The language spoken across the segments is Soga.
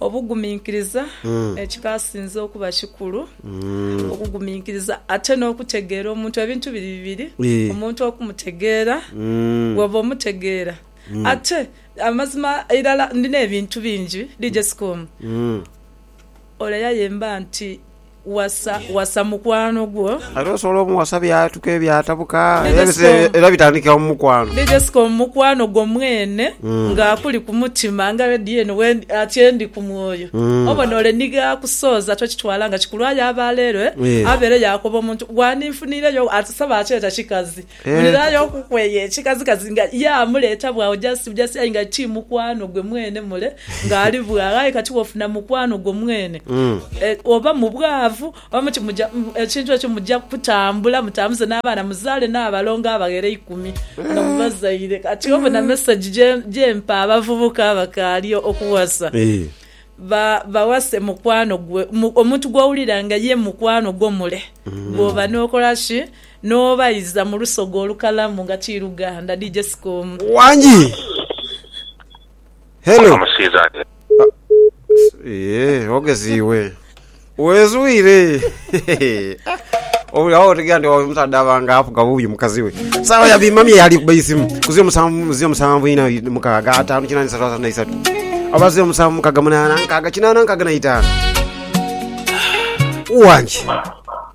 Obuguminkiriza, Ekikasinze okuba kikulu okuguminkiriza ate n'okutegeera omuntu. Ebintu biri bibiri, omuntu okumutegeera, bwooba omutegeera ate amazima irala ndi n'ebintu bingi, DJ Sikomu, ole yaayemba nti. Wasa wasa mukwano gwo. Era osobola omuwasa byatuka ebyatabuka era bitandikira mu mukwano. Ni Jessica omukwano gwo mwene nga akuli ku mutima nga radio eno ati endi ku mwoyo. Obona ole ni ghakusooza tokitwala nga kikulwayo aba lero abeere yaakoba omuntu gwaninfuniireyo ati sebo ati eta kikazi Wulirayo okukweya ekikazigazi nga ye amuleeta bw'agho just bujasi aye nga ti mukwano gwe mwene mule ng'ali bw'agho. Aye kati wofuna mukwano gwo mwene e, oba mu bwavu oba mu ki, muja, ekintu ekyo muja kutambula mutambuze n'abaana muzaale n'abalongo abaghera eikumi nga mubazaire. Kati obona message gye, gye mpa abavubuka abakaali okuwasa, ba, bawase mukwano gwe, mu, omuntu gw'owulira nga ye mukwano gwo mule, gw'oba n'okola ki? N'obaiza mu lusoga olukalamu nga kiiruganda. DJ Sikomu. Wangi. Hello. Eeh ogezi iwe. Wezwire. Obuli awo otegera nti oyo omusaadha aba nga afuga bubi mukazi we. Saawa ya bimamye yali kuba isimu. Kuzi omusanvu muzi omusanvu ina mukaaga ataanu kinaana isatu asatu na isatu. Abazi omusanvu mukaaga munaana nkaaga kinaana nkaaga na itaano. Wangi.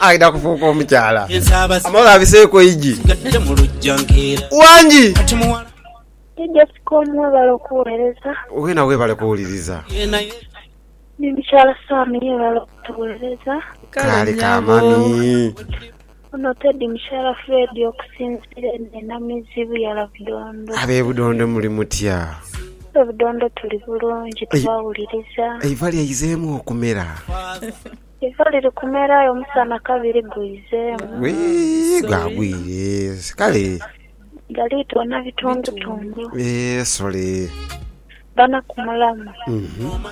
Aidha kufuuka omukyala. Amala abiseeku eigi. Wangi! Ni Descom webale okuwereza. Wena webale kuwuliriza. Ni mukyala Sam yebale okutuwereza. Kaale ka mami. Ono Teddy mukyala Fred okusinzira eno e Namizi Buyala Budondo. Abe Budondo muli mutya? Abe Budondo tuli bulungi tubawuliriza. Eiva lyaizemu okumera. Iva liri kumera aye omusana kabiri guizeemu. Wii gwagwire kale. Galitoona bitundutundu. Eeh sorry. Bana ku mulamwa. Uhmm.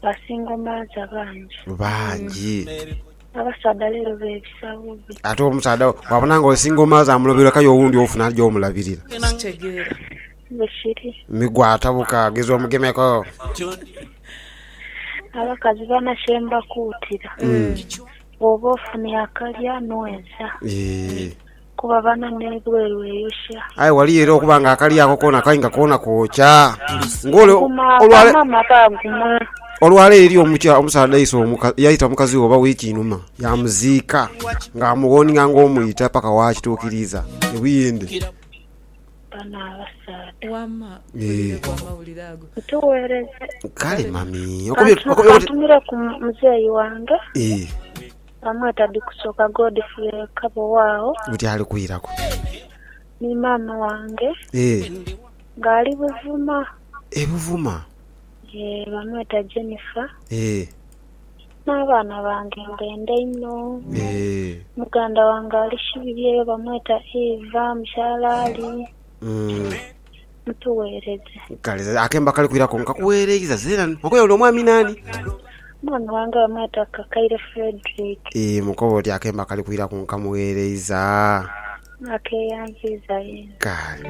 Ba single mother bangi. Bangi. Abasaadha leero bebisa bubi. Ate omusaadha bwabona nga oli single mother amulobera kale owundi ofuna aja omulabirira. Kitegeera. Bushiri. Migwa atabuka ageza omugemeku. Abakazi bana kye mbakuutira, bw'oba ofunye akalya nweza, Eeh. kuba bana n'ebweru eyokya. Aye waliyo era okuba nga akalya ako koona kai nga koona kwokya. Ng'ole Guma olwale- bamama baguma. olwaleero eriyo omukya- omusaadha aise omuka- yaita mukazi we oba wiiki inhuma yaamuziika ng'amuwooninga ng'omwita paka waakituukiriiza e Buyindi. Bano abasaadha. Wama mpulire ku amawulire ago. Tuwereze. Kale mami kantumire ku muzeeyi wange bamweta Bikusoka Godfrey Kabowa agho alikwiraku ni maama wange nga ali Buvuma e Buvuma bamweta Jennifer. N'abaana bange mbenda inho. Muganda wange ali Shibiri eyo bamweta Eva, mukyala Ali mutuweereze. Kale akemba kali kwiraku nkakuweereiza zeerani. Okoya oli omwami naani? Omwami wange bamweta Kakaire Fredrick. Ii Mukoba oti akemba kali kwiraku nkamuweereiza. Nakeeyanziiza yeena. Kale.